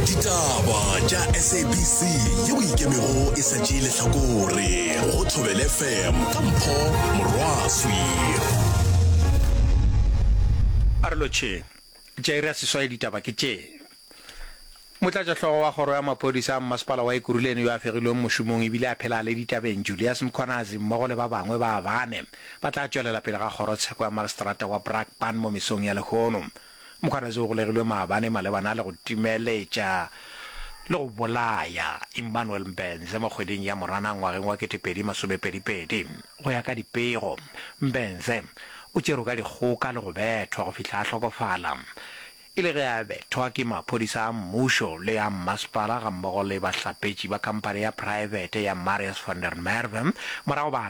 ditaba tša sabc ye o ikemego e sa tšee lehlakore go thobele fm ka mpho morwaswi a re lotšheng tša iri ya seswai ditaba ke tše motlatšahlogo wa kgoro ya maphodisa a mmasepala wa ekuruleni yo a fegilweng mošomong ebile a phela a le ditabeng julius mkhwanazi mmogo le ba bangwe ba bane ba tla tšwelela pele ga kgorotsheko ya mageseterata wa brakpan mo mesong ya lehono Mokhanase o golegilwe maabane malebana le go timeletša le go bolaya Immanuel Mbenze mo kgweding ya Moranang ngwageng wa 2022. Go ya ka dipego, Mbenze o tšerwe ka dikgoka le go bethwa go fihla a hlokofala e le ge a bethwa ke maphodisa a mmušo le a mmasepala gammogo le bahlapetši ba khamphane ya praebete ya Marius van der Merwe morago ba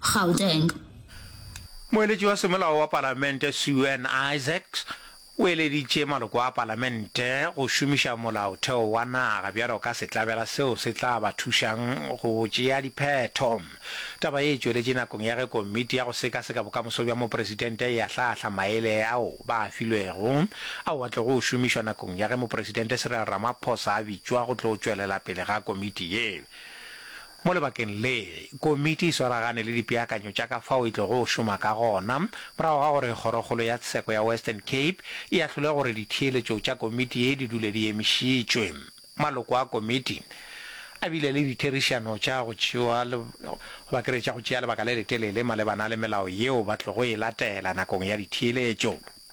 Gauteng. Moeletši wa semolao wa Palamente Suan Isaacs o eleditše maloko a Palamente go šomiša Molaotheo wa naga bjalo ka setlabela seo se tla ba thušang go tšea diphetho. Taba ye e tšweletše nakong ya ge Komiti ya go Sekaseka Bokamoso bja Mopresidente e ahlaahla maele ao ba a filwego ao a tlogo o šomišwa nakong ya ge Mopresidente Cyril Ramaphosa a bitšwa go tlo tšwelela pele ga komiti ye. Mo lebakeng le, komiti e swaragane le dipeakanyo tša ka fao e tlogo šoma ka gona morago ga gore Kgorokgolo ya Tsheko ya Western Cape e ahlole gore ditheeletšo tša komiti ye di dule di emišitšwe. Maloko a komiti a bile le ditherišano tša go tšewa goba ke re tša go tšea lebaka le letelele malebana le melao yeo ba tlogo e latela nakong ya ditheeletšo.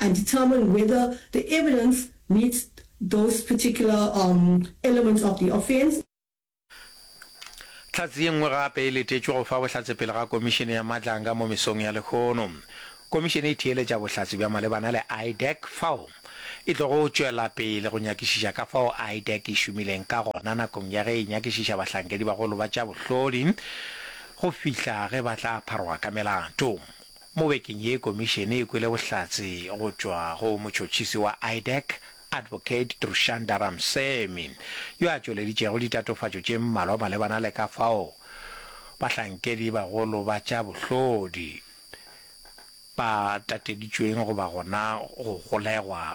and determine whether the evidence meets those particular elements of the offence. Hlatse ye nngwe gape e letetšwe go fa bohlatse pele ga Komišene ya Matlanga mo mesong ya lehono. Komišene e theeletša bohlatse bja malebana le IDAC fao e tlogo tšwela pele go nyakišiša ka fao IDAC e šomileng ka gona nakong ya ge e nyakišiša bahlankedibagolo ba tša bohlodi go fihla ge ba tla pharoga ka melato. Mo bekeng ye komišene e kwele bohlatse go tšwa go motšhotšhisi wa IDAC, Advocate Trushanda Ramsamy, yo a tšweleditšego ditatofatšo tše mmalwa malebana le ka fao bahlankedi bagolo ba tša bohlodi ba tateditšweng go ba gona go golegwa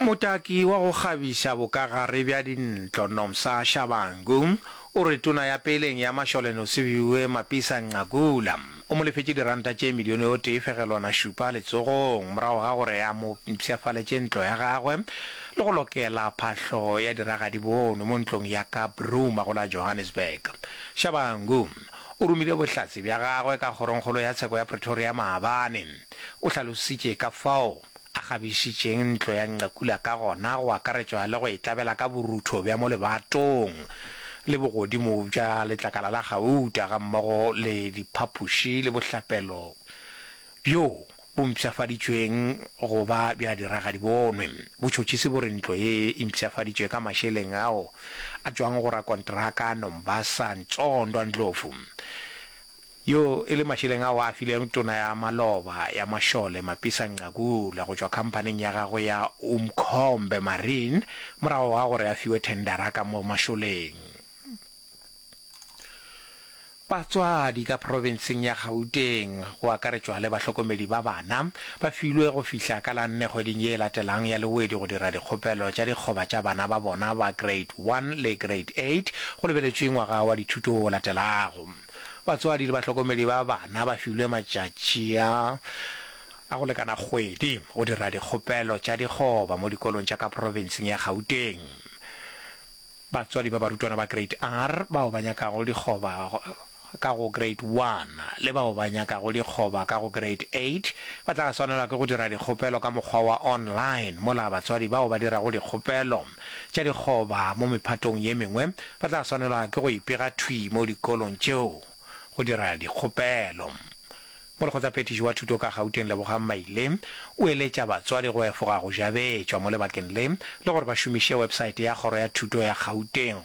Motaki wa go kgabiša bokagare bja dintlo Nomsa Shabangu o re tona ya peleng ya mašole Nosiviwe Mapisa-Nqakula o mo lefetše diranta tše milione o tee fegelwana šupa letsogong morago ga gore a mo mpshafaletše ntlo ya gagwe le go lokela phahlo ya diragadi bono mo ntlong ya ka Bruma go la Johannesburg. Shabangu o romile bohlatse bja gagwe ka kgorongkgolo ya tsheko ya Pretoria maabane. O hlalositše ka fao a kgabišitšeng ntlo ya Nqekula ka gona go akaretšwa le go e tlabela ka borutho bja mo lebatong le bogodimo bja letlakala la gauta gammogo le diphapoši le bohlapelo bjo bo mpshafaditšweng go ba bja diragadibonwe. Botšhotšhisi bo re ntlo ye e mpshafaditšwe ka mašeleng ao a tšwago go rakonteraka Nombasa Ntsondwa Ndlovu. Yo e le mašeleng ao a fileng tona ya maloba ya mašole Mapisa Nqakula go tšwa khamphaning ya gagwe ya Umkhombe Marine morago ga gore a fiwe thendara ka mo mašoleng. Batswadi ka profenseng ya Gauteng, go akaretšwa le bahlokomedi ba bana, ba filwe go fihla ka la nne kgweding ye e latelang ya Lewedi go dira dikgopelo tša dikgoba tša bana ba bona ba Grade One le Grade Eight go lebeletšwe ngwaga wa dithuto o latelago. Batswadi le bahlokomedi ba bana ba filwe matšatši a a go lekana kgwedi go dira dikgopelo tša dikgoba mo dikolong tša ka profenseng ya Gauteng. Batswadi ba barutwana ba Grade R bao ba nyakago dikgoba ka go Grade One le bao ba nyakago dikgoba ka go Grade Eight ba tla swanelwa ke go dira dikgopelo ka mokgwa wa online mola batswadi bao ba dirago dikgopelo tša dikgoba mo mephatong ye mengwe ba tla swanelwa ke go ipega thwi mo dikolong tšeo go dira dikgopelo. Molekgotsaphethiši wa thuto ka Gauteng Lebogang Maile o eletša batswadi go efoga go jabetšwa mo lebakeng le le gore ba šomiše websaete ya kgoro ya thuto ya Gauteng.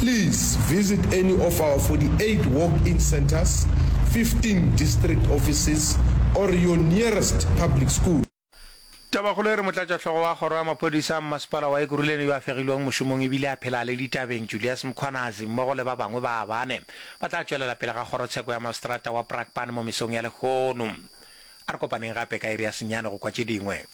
Please visit any of our 48 walk-in centres, 15 district offices or your nearest public school. Tabakgolo e re motlatšahlogo wa kgoro ya maphodisa a mmasepala wa Ekurhuleni yo a fegilwego mošomong e bile a phela a le ditabeng Julius Mkhwanazi mmogo le ba bangwe ba bane ba tla tšwelela pele ga kgorotsheko ya maseterata wa Brakpan mo mesong ya lehono. A re kopaneng gape ka iri ya senyane go kwa tše dingwe.